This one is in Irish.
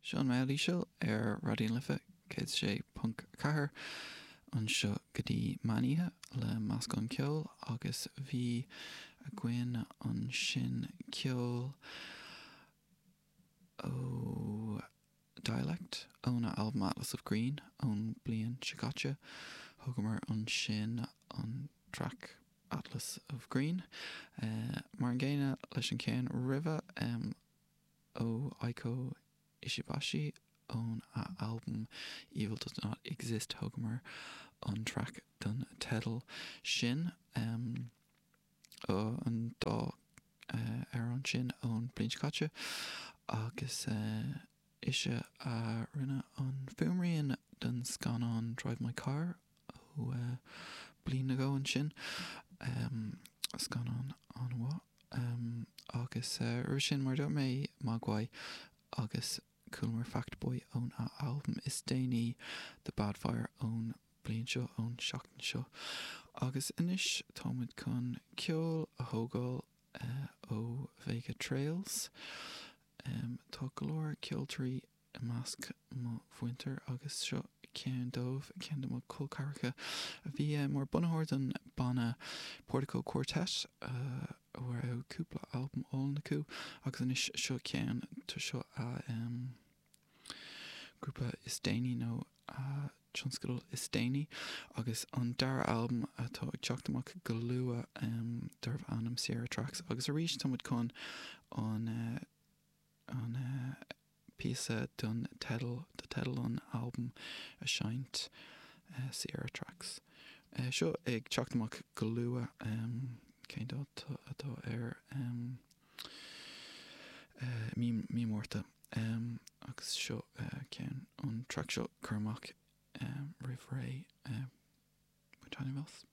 Seán Maoilíosa ar Raidió na Life 106.4 anseo go dtí meánoíche le meascán ceoil agus bhí againn ansin ceol ó Dialect, óna albam Atlas of Green ón bhliain seo caite. Thógamar ansin an traic Atlas of Green, mar an gcéanna leis an cheann roimhe, ó Eiko Ishibashi ón a albam Evil Does Not Exist, thógamar an traic don teideal sin. an dá amhrán sin ón bhliain seo caite agus ise a rinne an fuaimrian don scannán Drive My Car ó bliain nó dhó ó shin, scannán an-mhaith. Agus roimhe sin, mar a dúirt mé, Mogwai agus. Chualamar Fact Boy ón a albam is déanaí The Bad Fire ón bliain seo, ón tseachtain seo, agus anois táimid chun ceol a thógáil ó Vega Trails. Tá go leor ceoltoirí i measc mo mhuintir agus seo ceann dóibh, ceann de mo colceathracha a bhí mar bunaitheoir don banna Portico Quartet, a raibh cúpla albam álainn acu agus anois seo ceann, tá seo a grúpa is déanaí nó a tionscadal is déanaí agus an dara albam atá ag teacht amach go luath darbh ainm Sierra Tracks agus arís tá muid chun an an píosa don teideal, do teideal an albaim a seinnt, Sierra Tracks. seo ag teacht amach go luath. Cén dáta atá air? mí, mí Márta. Agus seo ceann, an track seo curtha amach roimh ré, bain taitneamh as.